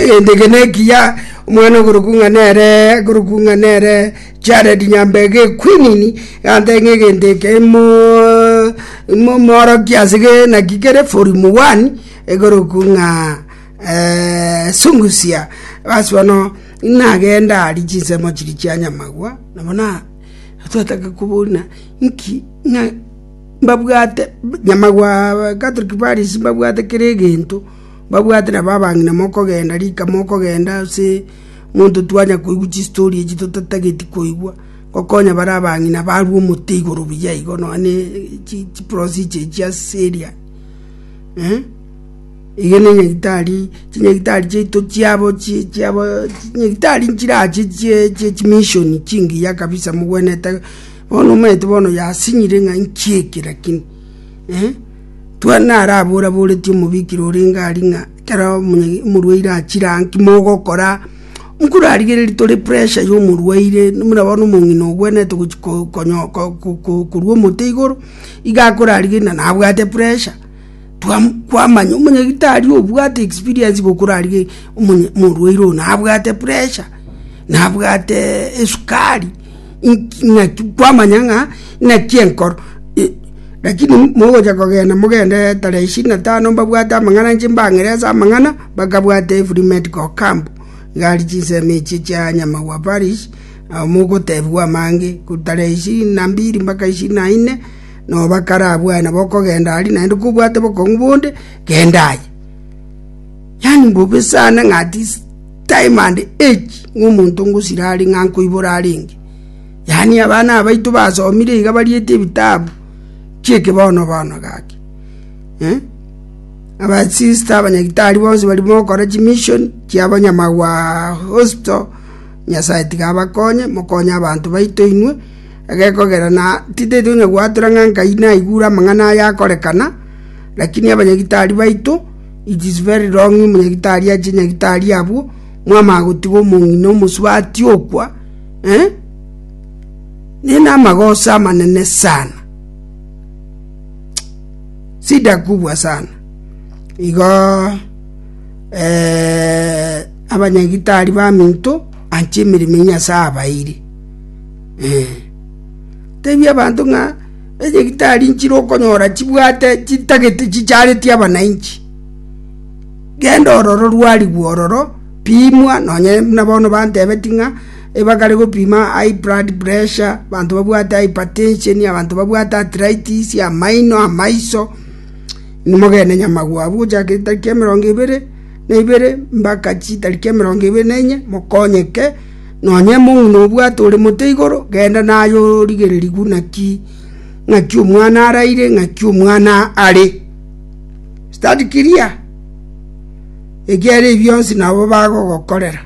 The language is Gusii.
egento eke nekiya omwana okorokwa ng'a nere akorokwa ng'a nere jared nyambega equinini ganta ng'a egento eke mo mo- moorokia ase ge naki kere forumu one ekorokwa ng'a sungusia bas bono nagenda aria chinsemo chiria chia nyamagwa nabo na twataka kobuna nki ng'a. Nyamagwa Catholic Parish mbabwate kera egento, mbabwate nabo abang'ina mokogenda rika mokogenda ase monto twanya koigwa chistory echi totatageti koigwa, gokonya bare abang'ina barwe omote igoro buya igo nonya ne chiprosija echi ase seria. Ege ne nyagetari, chinyagetari chiaito chiabo chinyagetari nchirache chie chimission chingiya kabisa mogwenerete. Bono omanyete bono yasinyire ng'a inki eke, lakini narabora-boretie omobikire orenge aria ng'a ekero omorwaire achire aa inki mogokora? Nkorarigereria tore pressure ya omorwaire, buna bono omong'ina ogwenerete gochi korwa omote igoro, iga akorarigereria na nabwate pressure. kwamanya omonyagitari obwate experience gokora aria omorwaire oyo nabwate pressure nabwate esukari naki kwamanya ng'a naki enkoro lakini mogocha kogenda mogende tarehe ishirini na tano mbabwate amang'ana inche mbang'ire ase amang'ana bakabwate free medical camp iga aria chinsemo echi chia nyamagwa parish mogotebiwa amange tarehe ishirini na mbili mpaka ishirini na ine. Noba kare abwaye nabo okogenda aria, naende kobwate bokong'u bonde, genda aye. Yaani mbobe sana ng'a at this time and age ng'omonto ngosira are ng'a nkoibora arenge. Yaani abana abaito basomire iga bariete ebitabu chi'ekebono bono gaki. Eh? Abasista abanyagitari bonsi bari mokora chimission chi'abanyamagwa hosto, Nyasaye tiga abakonye, mokonye abanto baito inwe, Egekogera na titaito onye gwatura ng'a Nkai naigure amang'ana aya akorekana, lakini abanyagitari baito, it is very wrong omonyagitari ache nyagitari abwo, mwamanya gotiga omong'ina omosubati okwa, eh? Nigo namagoso amanene sana. Sida kubwa sana. Igo eh abanyagitari baminto anche emeremo ya Nyasaye abaeire. Ee, tebia abanto ng'a enyagitari nchire okonyora chibwate chitagete chichareti abanainchi. Genda ororo rwarigwe ororo, pimwa, nonye buna bono bantebeti ng'a ebakare gopima high blood pressure, abanto babwate hypertension, abanto babwate arthritis, amaino, amaiso, nimogende nyamagwa abwo gochaka etariki emerongo ebere na ibere mbaka chitariki emerongo ebere na enye mokonyeke. Nonya ime buna obwate ore mote igoro, genda naye origererigwe naki ng'aki omwana araire, ng'aki omwana are. Stand clear! Ekiagera ebi bionsi nabo bagogokorera.